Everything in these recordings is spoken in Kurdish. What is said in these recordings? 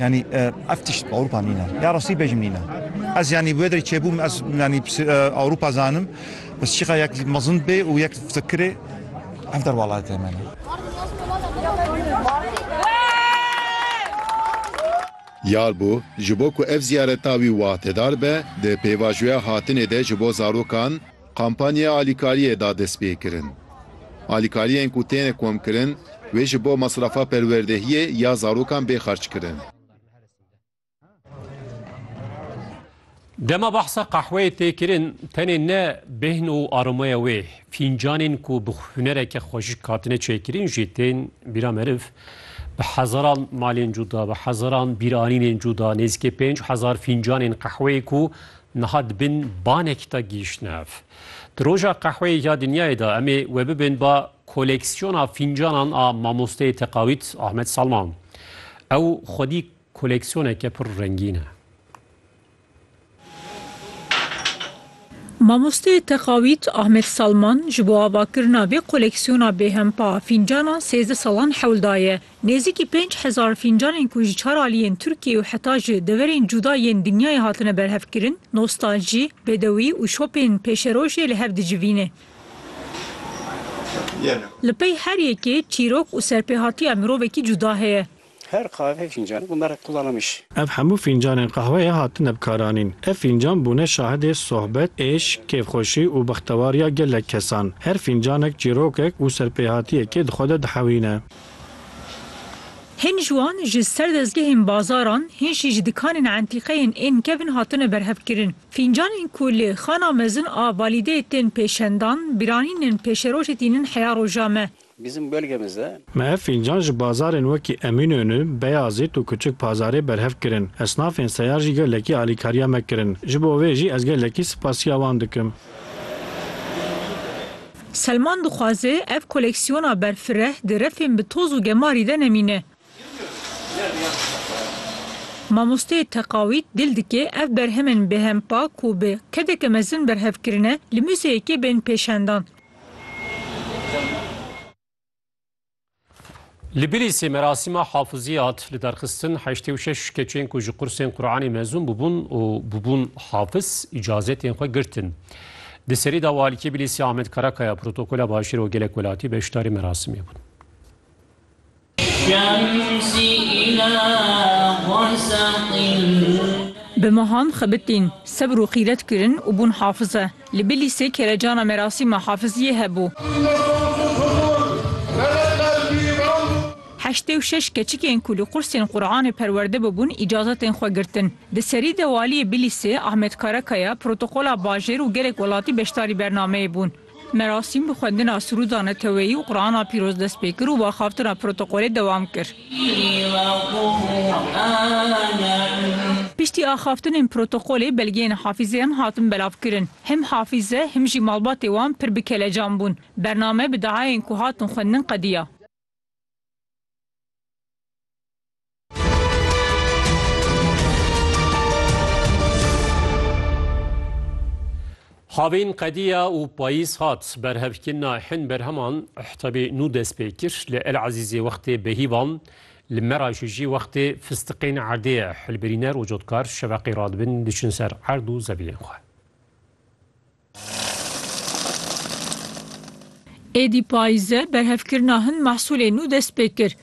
Yanî ev tişt Ewropa nîne. Ya rastî bejim nîne. Ez yanî wê derê çêbûm ez yanî Ewropa zanim. Bes çîqa yek mezin bê û yek fikirê ev derwalatê me. Diyar bû ji bo ku ev ziyareta wî wahtedar be, di pêvajoya hatinê de ji bo zarokan, Kampanyaya alîkariyê da destpêkirin. Alîkariyên ku têne komkirin wê ji bo mesrafa perwerdehiyê ya zarokan bê xerckirin. Dema behsa qehweyê tê kirin, tenê ne bêhn û aromeya wê, fîncanên ku bi hunereke xweşik hatine çêkirin jî tên bîra meriv. Bi hezaran malên cuda, bi hezaran bîranînên cuda, nêzîkê pênc hezar fîncanên qehweyê ku Niha di bin banekî de gihîştine ev. Di Roja Qehweyê ya Dinyayê de em ê wê bibin ba koleksiyona fîncanan a mamosteyê teqawît Ahmet Salman. Ew xwedî koleksiyoneke pir rengîn e. Mamosteyê teqawît Ahmet Salman ji bo avakirina vê koleksiyona bêhempa a fîncanan sêzdeh salan hewl daye. Nêzîkî pênc hezar fîncanên ku ji çar aliyên Tirkiyeyê û heta ji deverên cuda yên dinyayê hatine berhevkirin, nostaljî, bêdewî û şopên pêşerojê li hev dicivîne. Li pey her yekê çîrok û serpêhatiya mirovekî cuda heye. Her qave fîncan û merek qulanamiş. Ev hemû fîncanên qehweyê hatine bikaranîn. Ev fîncan bûne şahidê sohbet, êşk, kêfxweşî û bextewariya gelek kesan. Her fîncanek çîrokek û serpêhatiyekê di xwe de dihewîne. Hin ji wan ji ser dezgehên bazaran, hin jî ji dikanên entîqeyên ên kevn hatine berhevkirin. Fîncanên ku li Xana Mezin a Valideyê tên pêşendan, biranînin pêşerojê tînin heya roja me. Bizim bölgemizde. Me ev fîncan ji bazarên wekî Emînönü, Beyazît û Küçük Pazarê berhev kirin. Esnafên seyar jî gelekî alîkariya me kirin. Ji bo vê jî ez gelekî sipasiya wan dikim. Selman dixwaze ev koleksiyona berfireh di refên bi toz û gemarî de nemîne. Mamosteyê teqawît dil dike ev berhemên bêhem pak û bi kedeke mezin berhev kirine, li muzeyekê bên pêşendan. Li Bilîsê merasîma hafizî hat li derxistin heştê û şeş keçên ku ji qursên Quranê mezûn bûbûn û bûbûn hafiz îcazetên xwe girtin. Di serî de Walîkê Bilîsê Ahmet Karakaya protokola Başêr û Gelek Welatî beşdarî merasimê bûn. Bi mehan xebitîn, sebr û xîret kirin û bûn hafize. Li Bilîsê kêrecana merasîma Hafiziyê hebû. Heştê û şeş keçikên ku li qursên Quranê perwerde bûbûn îcazetên xwe girtin. Di serî de Waliyê Bilîsê Ahmet Karakaya, protokola bajêr û gelek welatî beşdarî bernameyê bûn. Merasîm bi xwendina Sirûda Neteweyî û Qurana Pîroz dest pê kir û baxavtina protokolê dewam kir. Piştî axaftinên protokolê belgeyên Hafîzê em hatin belavkirin. Him Hafîze him jî malbatê wan pir bi kelecan bûn. Bername bi dayayên ku hatin xwendin qediya. Havîn qediya û payîz hat. Berhevkirina hin berheman ihtebê nû dest pê kir. Li El Ezîzê wextê behîvan, li Meraşê jî wextê fistiqên erdê ye. Hilbirîner û cotkar şeveqê radibin diçin ser erd û zeviyên xwe. Êdî payîz e, berhevkirina hin mehsûlê nû dest pê kir.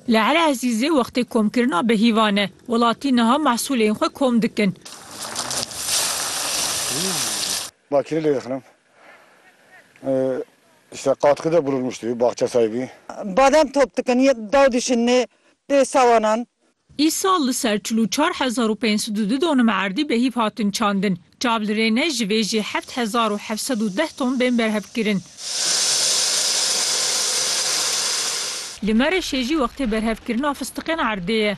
Li Ele Ezîzê wextê komkirina bi hîvan e. Welatî niha mehsûlên xwe kom dikin. Badem top dikin, daw dişin nê pê sawanan. Îsal li ser çil û çar hezar û pênc sed û du donim erdî bi hîv hatin çandin. Çav li rê ne, ji vê jî heft hezar û heft sed û deh ton bên berhevkirin. Li Mereşê jî wextê berhevkirina fistiqên erdê ye.